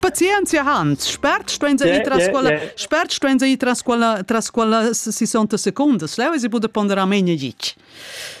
Pazienzia Hans, spert stuein se ir tras quella, spert stuein se ir tras quella, tras quella 60 secondas, leu si bude ponder a meni gitg.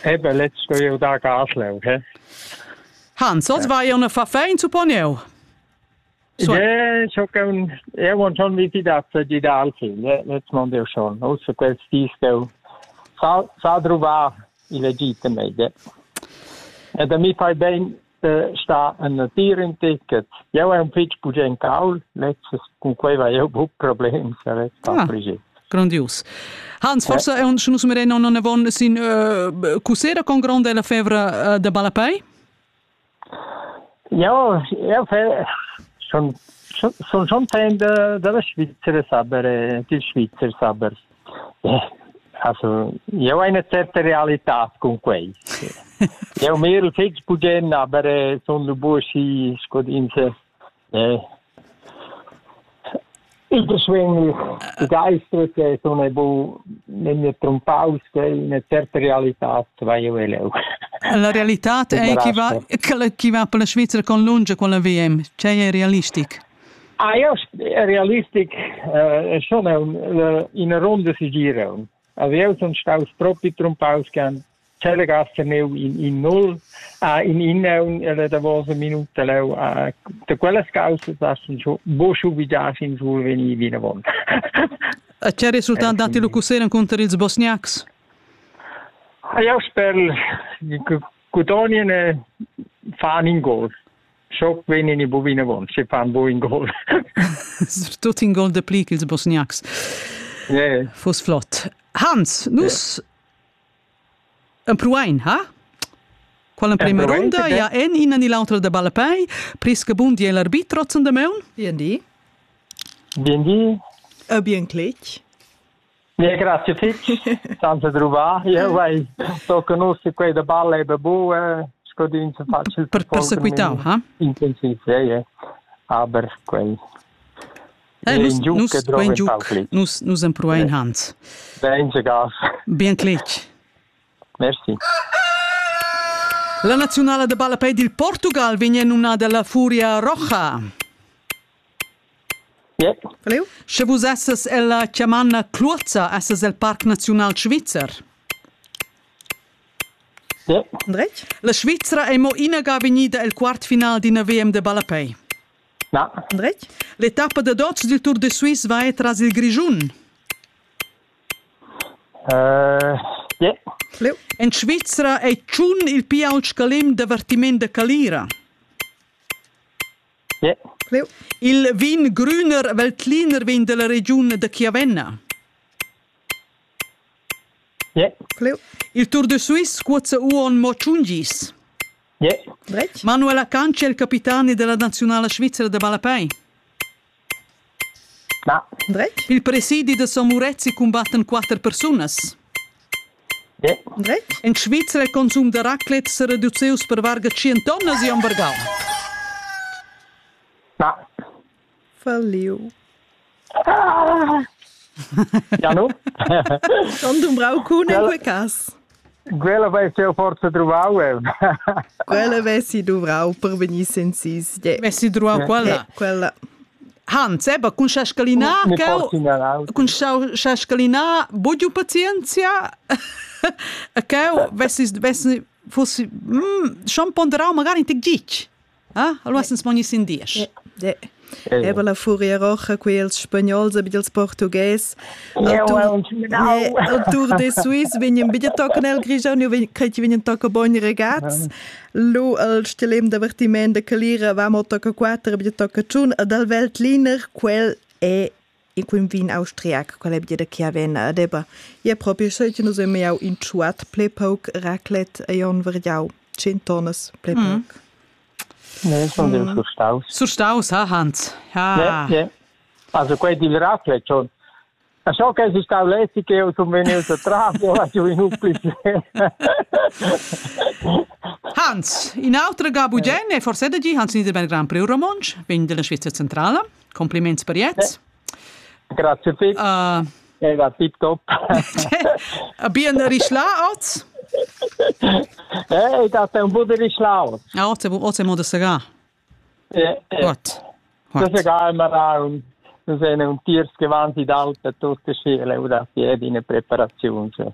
Ebe, letz sto eu da Gaslev, he? Hans, oz vai ja una faffein, supponieu? So. Ja, so con Erwan schon wie dat die da alfin, letzt man ja schon. Außer quels dis go sa sa druva il Egitto meide. E da mi fai ben sta a natir in ticket. Jau hai un fitg bugen caul, lezzes cun quei vai eu buc problems a vet ah, Grandius. Hans, forse è un Schnus Mereno non avon sin uh, cussera con grande la fevra uh, de Balapei? Ja, ja fe schon schon schon fan de della Svizzera saber, eh, il Svizzer saber. Also, jeu hai ina certa realitad cun quei. Jeu mirel fetg bugen, aber eh, sun lu busi sco ins eh, il beschwing begeistert e sono e bu nenne trompaus che una certa realità vai io leu. La realità è che va che va per la Svizzera con lunge con la VM, cioè è realistic. Eir realistic sun eau in a ronda segiiraun. Avieus sun staus propi trumpaus ch'han telegasse neu in in null in innaun e le davosa minuta leu da quellas causas sun scho buc obligads insumma vegnir vinavon. E che resultat datti lu cussegl encunter ils Bosniacs? Eu sper che Codonien fan in gol. Schock vegnin i bu vinavon, se fan bu in gol. Tut in gol de pli ch'ils bosniacs. Yeah. Fus flott. Hans, nus yeah. empruein, ha? Qual emprema ronda, ja en ina ni l'autra da ballapei, prisca bun di l'arbitro zun de meun? Bien di. Bien di. E bien cletg. Ja, grazie fitg, senza druvà. Io vai, so conosco quei da balle e babu, scodin se facile. Per persequitau, ha? Intensiv, ja, ja. Aber quei Eh, nus, nus, quei giuc, nus, nus empruein Hans. Ben gas. Bien clec. Merci. La nazionale de ballapei dil Portugal vegn numnada la Furia Roja. Sche vus essas ella chamanna Cluozza, essas el Parc Naziunal Svizzer. Andretg? La Svizra ei mo inaga vegnida el quartfinal d'ina VM de ballapei. Andretg? L'etappa da dots dil Tour de Suisse va tras il Grischun. En Svizra ei tschun il pia ault scalem d'avertiment da calira. Il vin grüner veltliner vegn dalla regiun da Chiavenna. Il Tour de Suisse cuozza uonn mo tschun gis. Manuela Canci è il capitani della nazionala svizzera da ballapei. Dretg? Il presidi da Son Murezi cumbattan quatter persunas. Dretg? In Svizra il consum da raclette sa reduceus per varga 100 tonnas e hamburgau. Falliu. Janu? Schon dumbrau cun in quei cas. Quella vess jeu forsa truvau eu. quella vessi duvrau per vegnir senzis. Vessi truvau quella. quella. Hans, eba, cun sascalinà, cun sascalinà, bugiu pazienzia, e cheu vessi, vessi, fossi, mm, schon ponderau magari in tec gitg. Ah, alwas ins mogni sin diesch. Eba la furia rocha qui els spagnols a bit portugués. El Tour de Suisse vegnen bit tocan el grigian, io creti vegnen toca boni regats. Lu el stilem divertiment de Calira va mo toca quattro bit toca tschun ad al Weltliner, quel è e cun vin austriac, quel è bia da Chiavenna ad Eber. Ia propi seigi nus emiau in tschuat ple pauc raclet e on variau tschient tonnas ple pauc. Ne, sun dil surstaus. Surstaus, ha Hans. Ha. Ne, ne. Also quei dil raclet schon. A so che si stau leti che ho sun venius a trafo, ha giu in pli. Hans, in autra ga bugenne, forse da gi Hans Niederberg Grand Prix Romontsch, vegn dalla Svizzera centrala. Compliments per jet. Grazie te. Uh, eh, va tip top. Bien rischla oz? Eh, da te un po' di rischla oz. Ah, oz oz mo da sega. Eh, eh. Gut. Gut. Das ist egal, wir haben wir sind ein Tiers gewandt in Alpen, tutte Schule, und das jede in Präparation. So.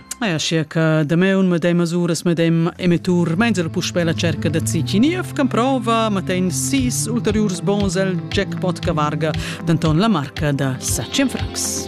Eia, schia che dameun medem masuras medem emettur meinsel puspè la cerca da Cichiniev can prova matain sis ulteriurs bons el jackpot che varga denton la marca da 7 francs.